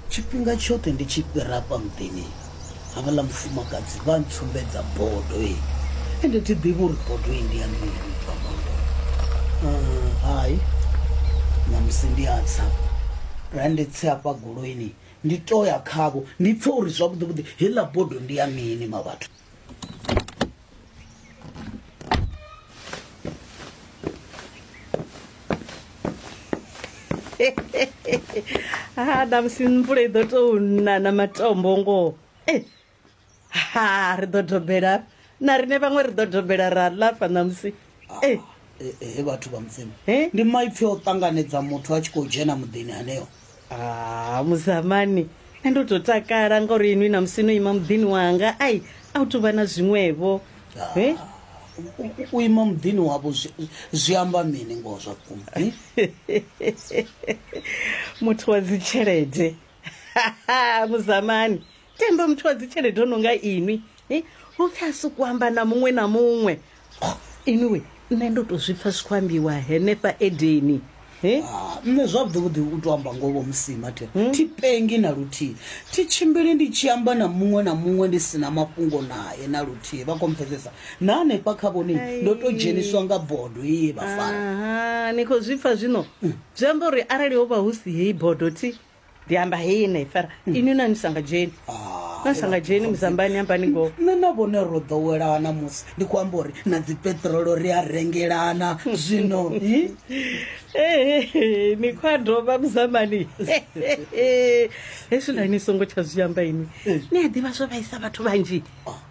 tshifhinga tshoṱhe ndi tshi fhira hafha muḓini havhaḽa mufumakadzi vha ntsumbedza bodo e ende thi ḓivhi uri bodo i ndi ya mini bva bodo Ah, hai namusi ndi a tsa ra ndi tse hafha goloini ndi to ya khavho ndi pfe uri zwavhuḓivhuḓi heiḽa bodo ndi ya mini ma vhathu ha ṋamusi mvula i ḓo tou na na matombo ngoho e ha ri ḓo dobela na rine vhaṅwe ri ḓo dobela ra lafa ṋamusi Hey. Eh, eh, he vhathu vha mudzimu Eh? ndi maipfi o ṱanganedza muthu a tshi khou dzhena muḓini haneo Ah, muzamani nṋe ndo tou takala ngauri inwi na musi no ima muḓini wanga ai a u tou vha na zwiṅwevho Ah. Eh? U- u- u ima muḓini wavho zwi- zwi amba mini ngoho zwa vhukuma eh? muthu wa dzitshelede muzamani tenda muthu wa dzitshelede o no nga inwi eh, u pfhi a si ku amba na muṅwe na muṅwe Oh, inwi we nṋe ndo tou zwi pfa zwi khou ambiwa henefha edeni Eh? Ah, nṋe zwavhuḓivhuḓi u to amba ngoho musima the thi pengi na luthihi thi tshimbili ndi tshi amba na muṅwe na muṅwe ndi si na mafhungo naye na luthihi vha khou mpfesesa na hanefha kha vhone ndo to dzheniswa nga bodo ye vha fara Aha, ni khou zwi pfa zwino zwi amba uri arali ho vha hu si heyi bodo thi ndi amba hei na ifara inwi na ni sa nga dzheni Ah, na sa nga dzheni muzambani ambani ngoho nṋe na vhone ro ḓowelana musi ndi khou amba uri na dzipetrolo ri a rengelana zwino hi? Ehe, ni khou a dovha muzambani hezwiḽa ni songo tsha zwi amba inwi ni a ḓivha zwo vhaisa vhathu vhanzhi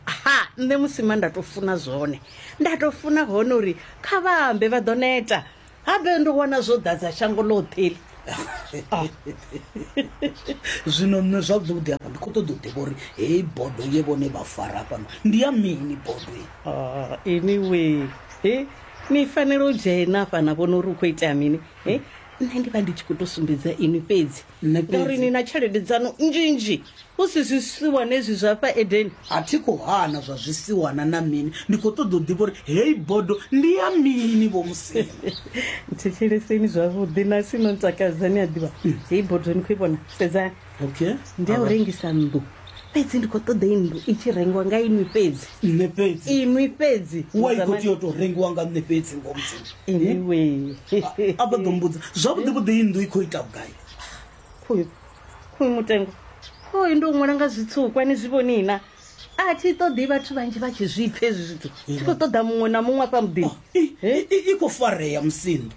ha nṋe musima nda tou funa zwone nda tou funa hone uri kha vha ambe vha ḓo neta habe ndo wana zwo ḓadza shango ḽoṱhe ḽi ah. zwino nṋe zwavhuḓi hafha ndi khou ṱoḓa u ḓivha uri heyi bodo ye vhone vha fara fhano ndi ya mini bodo ah, anyway e ni fanela u dzhena fhana vhona uri u khou itea mini e nṋe ndi vha ndi tshi khou tou sumbedza ini fhedzi Nṋe fhedzi. Ngauri ni na tshelede dzanu nnzhinzhi hu si zwisiwana ezwi zwa fha edeni a thi khou hana zwa zwisiwana na mini ndi khou ṱoḓa u ḓivha uri heyi bodo ndi ya mini vho musema thetsheleseni zwavhuḓi na si no ntakadza ni a ḓivha heyi bodo ni khou i vhona sedzani okay ndi ya u rengisa nnḓu fhedzi ndi khou ṱoḓa i nnḓu i tshi rengiwa nga inwi fhedzi nṋe fhedzi inwi fhedzi wa i khou tea u tou rengiwa nga nṋe fhedzi ngo mudzimu anyway a vha ḓo mbudza zwavhuḓi vhuḓi i nnḓu i khou ita vhugai khoyu khoyu mutengo khoyu ndo ṅwala nga zwitsukwa ni zwi vhoni na a thi ṱoḓi vhathu vhanzhi vha tshi zwi pfha hezwi zwithu thi khou ṱoḓa muṅwe na muṅwe afha muḓini i khou farea musinḓa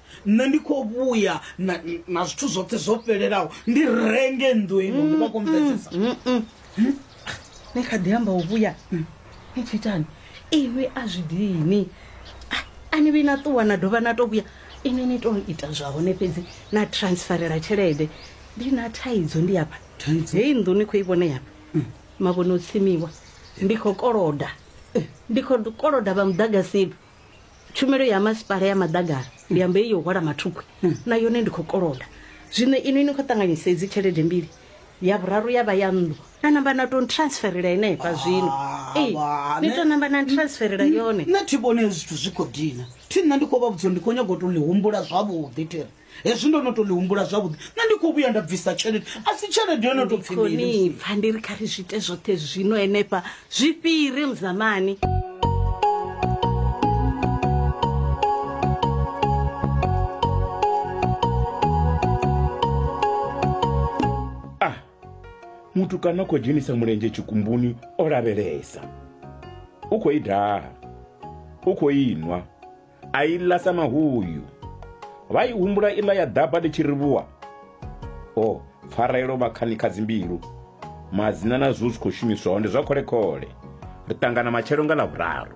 nṋe ndi khou vhuya na, na zwithu zwoṱhe zwo fhelelaho ndi renge nnḓu ino ndi vha khou mvedzesa ni kha ḓi amba u vhuya ni tshi itani inwi a zwi dini A- a ni vhi na ṱuwa na dovha na to vhuya inwi ni to ita zwa hone fhedzi na transferela tshelede ndi na thaidzo ndi afha Thaidzo? heyi nnḓu ni khou i vhona yafha mavhone o tsimiwa ndi khou koloda ndi khou koloda vha muḓagasini tshumelo ya masipala ya maḓagara ndi amba iyo hwala mathukhwi hmm. na yone ndi khou koloda zwino inwi ni khou ṱanganyisa idzi tshelede mbili ya vhuraru ya vha ya nnḓu na namba na to transferela ine ifha zwino ah, ee ni to namba na transferela yone nṋe thi vhone zwithu zwi khou dina thi nṋe ndi khou vha vhudzo ndi khou nyago to ḽi humbula zwavhuḓi thiri hezwi ndo no to ḽi humbula zwavhuḓi nṋe ndi khou vhuya nda bvisa tshelede a si tshelede yo no to pfi mini musi- konipfa ndi ri kha ri zwiite zwoṱhe zwino henefha zwi fhire muzamani ah muthu kana khou dzhenisa mulenzhe tshikumbuni o lavhelesa u khou i daha u khou inwa a i ḽa sa mahuyu vha i humbula iḽa ya ḓaba ḽi tshi rivhuwa o pfarelo vha khani kha dzimbilu madzina na zwo zwi khou shumiswa hone zwa khole khole ri ṱangana matshelo nga ḽa vhuraru